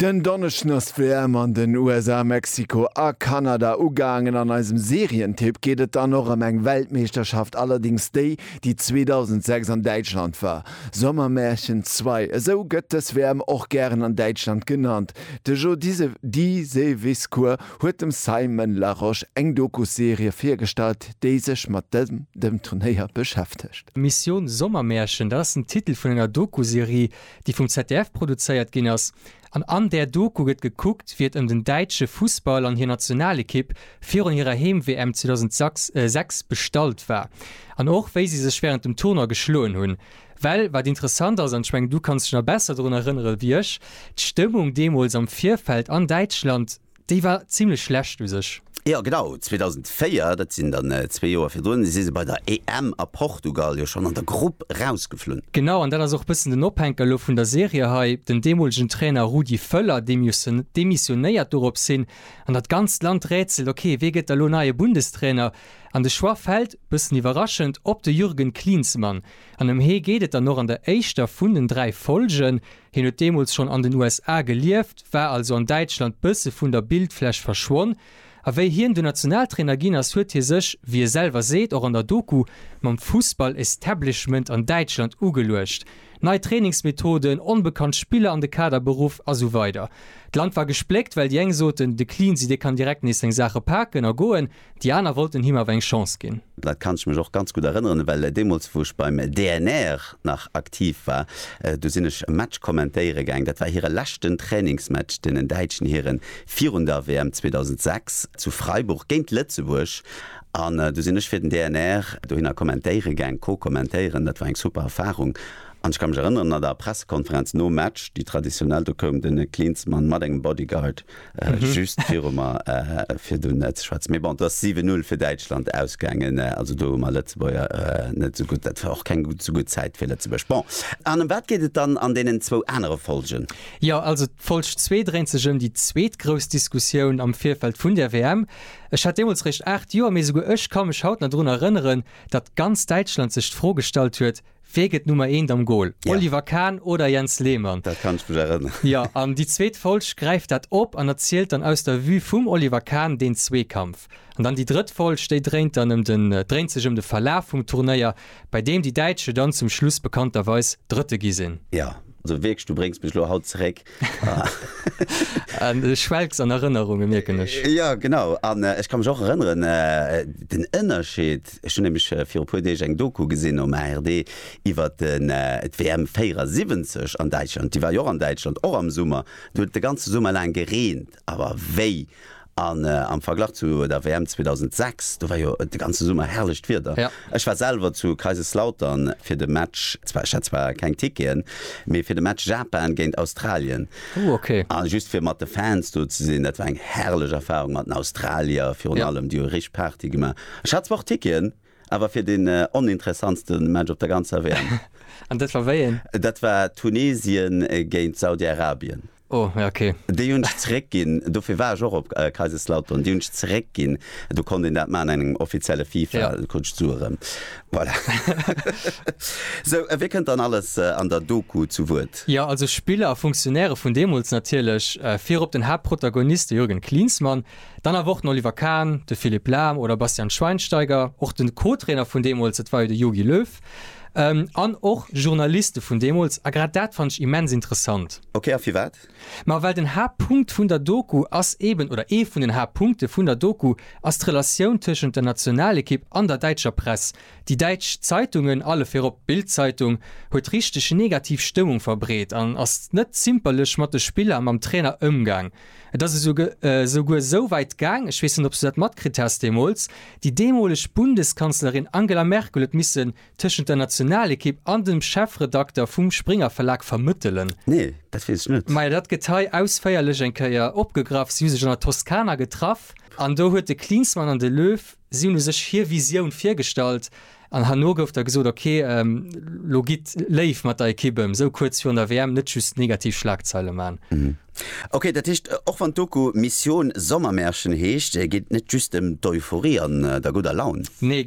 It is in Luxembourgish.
Den Donneschden ass d'WM an den USA, Mexiko a Kanada ugaangen. An eisem Serientipp geet et dann och ëm eng Weltmeeschterschaft, allerdéngs déi, déi 2006 an Däitschland war, Sommermärchen ii. Esou gëtt dës WM och gären an Däitschland genannt. De Jo Diseviscourt huet dem Simon Larosche eng Dokusserie virgestallt, déi sech mat dem Turnéier beschäftegt. Mission Sommermärchen, dat ass den Titel vun enger Dokuserie, déi vum ZDF produzéiert ginn ass, an an där Doku gëtt gekuckt, wéi et ëm den däitsche Fussball an hir Nationalekipp virun hirer Heem-WM 2006 bestallt war an och wéi si sech wärend dem Tournoi geschloen hunn. Well wat interessant ass, an ech mengen du kanns dech nach besser drun erënnere wéi ech, d'Stëmmung deemools am Virfeld an Däitschland, Déi war zimlech schlecht u sech. Jo genau, 2004, dat sinn dann zwee Joer virdrun, si se bei der EM a Portugal jo schonn an der Grupp rausgeflunn. Genau, an dat ass och e bëssen den Ophänker elo vun der Serie hei, den deemolegen Trainer Rudi Völler, dee demissionéiert dorops hin, an dat ganzt Land rätselt, ok, wee gëtt da lo neie Bundestrainer? An de Choix fält, bëssen iwwerraschend, op de Jürgen Klinsmann. An ëm hee geet et dann och an der éischter vun den dräi Folgen. Hien huet deemools schonn an den USA gelieft, war also an Däitschland bësse vun der Bildfläch verschwonn. A wéi hien dunn Nationaltrainer ginn ass, huet hie sech, wéi e selwer seet, och an der Doku, mam Fussball-Establishment an Däitschland ugeluecht. Nei Trainingsmethoden, onbekannt Spiller an de Kader beruff a sou weider. D'Land war gespléckt, well déi eng soten, de Cleansy dee kann direkt nees seng Saache paken a goen. Déi aner wollten him awer eng Chance ginn. Dat kann ech mech och ganz gutt erënneren, well deemools wou ech beim DNR nach aktiv war, do sinn ech e Match kommentéiere gaang. Dat war hire leschten Trainingsmatch, deenen däitschen Hiren, virun der WM 2006 zu Freiburg géint Lëtzebuerg. An du sinn ech fir den DNR dohinner kommentéiere gaang, co-kommentéieren. Dat war eng super Erfarung. An ech ka mech erënneren, an der Pressekonferenz nom Match, déi traditionell, do koum de Klinsmann mat engem Bodyguard, Just viru mer fir do net ze schwätzen. Mee bon, et ass 7-0 fir Däitschland ausgaangen. Also do hu mer Lëtzebuerger net esou gutt, dat war och keng esou gutt Zäit fir Lëtzebuerg. Bon, an ëm wat geet et dann an deenen zwou anere Folgen? Jo, also d'Folg zwee dréint sech ëm déi zweet grouss Diskussioun am Virfeld vun der WM. Ech hat deemools réischt 8 Joer, mee esouguer ech ka mech haut nach drun erënneren, datt ganz Däitschland sech d'Fro gestallt huet, Wee gëtt Nummer eent am Gol? Ja. Oliver Kahn oder Jens Lehmann? Dat kann ech mech erënneren. Jo, an déi zweet Folg gräift dat op an erzielt dann aus der Vue vum Oliver Kahn deen Zweekampf. An dann déi drëtt Folg, déi dréint dann ëm den, dréint sech ëm de Verlaf vum Turnéier, bei deem déi Däitsche dann zum Schluss bekannterweis Drëtte gi sinn. Jo, also wierklech, du bréngs mech elo haut zeréck Du schwelgs an Erënnerungen, mierken ech. Jo, genau. An ech ka mech och erënneren, den Ënnerscheed, ech hunn nämlech viru e puer Deeg eng Doku gesinn um ARD iwwer d'WM 74 an Däitschland, déi war jo och an Däitschland, och am Summer. Do huet et de ganze Summer laang gereent. Awer wéi! An am Verglach zu der WM 2006, do war jo de ganze Summer herrlecht Wieder. Ech war selwer zu Kaiserslautern fir de Match, zwar ech hat zwar keng Ticketen, mee fir de Match Japan géint Australien. Ooh ok. A just fir mat de Fans do ze sinn, dat war eng herrlech Erfahrung mat den Australier virun allem, déi hu richteg Party gemaach. Ech hat zwar och Ticketen. Awer fir den oninteressantste Match op der ganzer WM. An dat war wéi een? Dat war Tunesien géint Saudi-Arabien. Oh, ja ok. Déi hunn ech zeréckginn, dofir war ech och op Kaiserslautern. Déi hunn ech zeréckginn, do konnt een dat maachen an engem offizielle FIFA, da krut ech d'Sue erëm. Voilà. Sou, wie kënnt dann alles an der Doku zu Wuert? Jo, also Spiller a Funktionäre vun deemools natierlech. Virop den Haaptprotagonist, de Jürgen Klinsmann, Dann awer och den Oliver Kahn, de Philippe Lahm oder Bastian Schweinsteiger, och de Co-Trainer vun deemools, dat war jo de Jogi Löw, an och Journaliste vun deemools. A grad dat fannt ech immens interessant. Ok, a firwat? Ma well den Haaptpunkt vun der Doku ass eeben, oder ee vun den Haaptpunkte vun der Doku ass d'Relatioun tëschent der Nationalekipp an der däitscher Press. Déi däitsch Zeitungen, alle virop d'Bild-Zeitung, huet richteg negativ Stëmmung verbreet an ass net zimperlech mat de Spiller a mam Trainer ëmgaang. Et ass esouguer esou wäit gaang, ech weess net, ob s du dat matkritt has deemools, déi deemoleg Bundeskanzlerin Angela Merkel huet missen tëschent der Nationalekipp an dem Chefredakter vum Springer-Verlag vermëttelen. Nee, dat weess ech net. Majo, dat gëtt hei ausféierlech eng Kéier opgegraff. Si hu sech an der Toskana getraff an do huet de Klinsmann an de Löw Si hunn u sech hir Visioun virgestallt an herno gouf da gesot, ok, lo gitt léif mat der Ekipp ëm, esou kuerz virun der WM net just negativ Schlagzeile man. Ok, dat heescht, och wann d'Doku Mission Sommermärchen heescht, geet et net just ëm d'Euphorie an der gudder Laun. Nee.